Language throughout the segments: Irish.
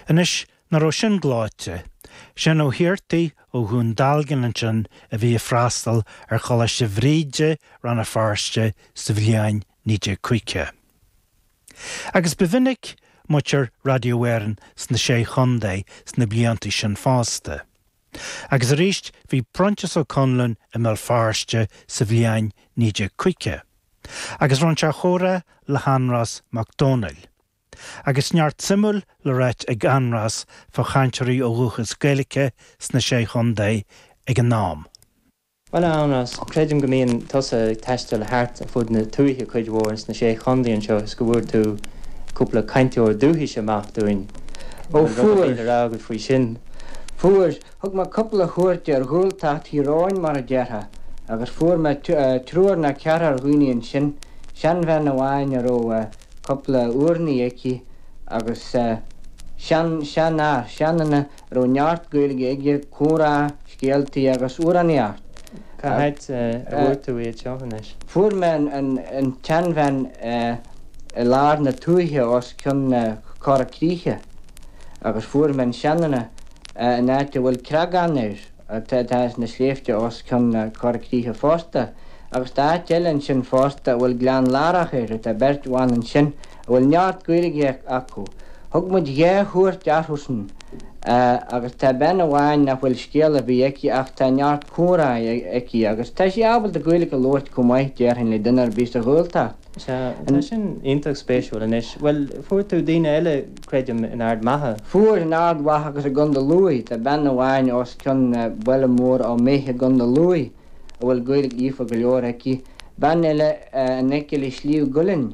Anois, nach raibh sin gleoite. Seán Ó hAghartaigh ó Dhún Dealgan ansin a bhí ag freastal ar Choláiste Bhríde, Rann na Feirste sa bhliain 1950. Agus ba mhinic muintir Radio Éireann sna Sé Chontae sna blianta sin fosta. Agus arís bhí Proinsias Ó Conluain i mBéal Feirste sa bhliain 1950. Agus roinn sé a chomhrá le hAindrias Mac Dónaill. agus neart suimiúil le ráit ag Aindrias fá chainteoirí ó dhúchas Gaeilice sna Sé Chontae ag an am. Bhuel, a Aindrias, creidim go mbíonn tusa ag taisteal thart ar fud na tuaithe cuid mhór sna Sé Chontae anseo is go bhfuair tú cúpla cainteoir dúchais amach dúinn. An bhfuil rud ar bith le rá agat faoi sin? Ó, fuair. Thug mé cúpla chuairt ar Ghaeltacht Thír Eoghain, mar a déarfá, agus fuair mé triúr ná ceathrar dhaoine ansin, seanbhean amháin a raibh eh. cúpla urnaí aici agus sean, sean, a, seanduine a raibh neart Gaeilge aige, comhrá, scéaltaí agus amhránaíocht. Cá háit a bhfuair tú iad seo anois? Fuair mé an tseanbhean i lár na tuaithe os cionn na Coirre Críche agus fuair mé an seanduine in áit a bhfuil Creagán air. atá sna sléibhte os cionn na Corr Críche fosta, agus tá áit eile ansin fosta a bhfuil Gleann Lárach air, tá beirt bhan ansin a bhfuil neart Gaeilge acu. Thug muid dhá chuairt orthusan agus tá bean amháin nach bhfuil scéal ar bith aici ach tá neart comhrá aici agus tá sí ábalta Gaeilge a labhairt chomh maith, déarfainn, le duine ar bith sa Ghaeltacht. Sea, tá sin iontach spéisiúil. Anois, bhuel, fuair tú daoine eile, creidim, in Ard Mhacha. Fuair, in Ard Mhacha agus i gContae Lúigh. Tá bean amháin os cionn baile mór Ó Méith i gContae Lúigh a bhfuil Gaeilge líofa go leor aici. Bean eile in aice le Sliabh gCuillinn.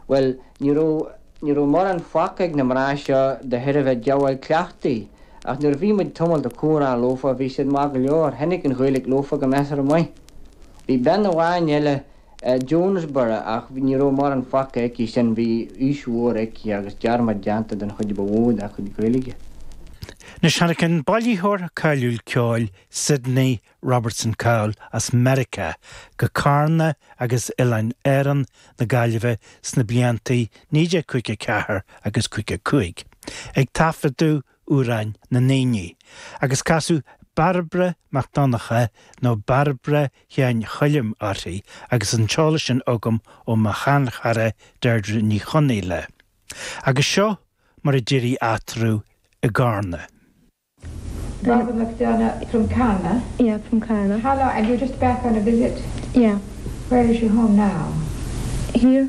Bhuel, ní raibh, ní raibh mórán fágtha ag na mná seo de thairbhe díobháil cleachtaidh, ach nuair a bhí muid tamalt ag comhrá leofa, bhí siad maith go leor, tháinig an Ghaeilge leofa go measartha maith. Bhí bean amháin eile, Jonesborough ach ní raibh mórán fágtha aici sin, bhí aois mhór aici agus dearmad déanta den chuid ba mhó dá cuid Gaeilge. Anois tháinig an bailitheoir cáiliúil ceoil Sidney Robertson Cowell as Meiriceá go Carna agus Oileáin Árann na Gaillimhe sna blianta 1954 agus 55 ag taifeadadh amhráin na ndaoine, agus casadh Bairbre Mac Donncha nó Bairbre Sheáin Choilm uirthi agus an t-eolas sin agam ó mo sheanchara Deirdre Ní Chonghaile. Agus seo mar a d'éirigh eatarthu i gCarna. Bairbre Mac Donncha from Carna? Yeah, from Carna. How long, and you're just back on a visit? Yeah. Where is your home now? Here.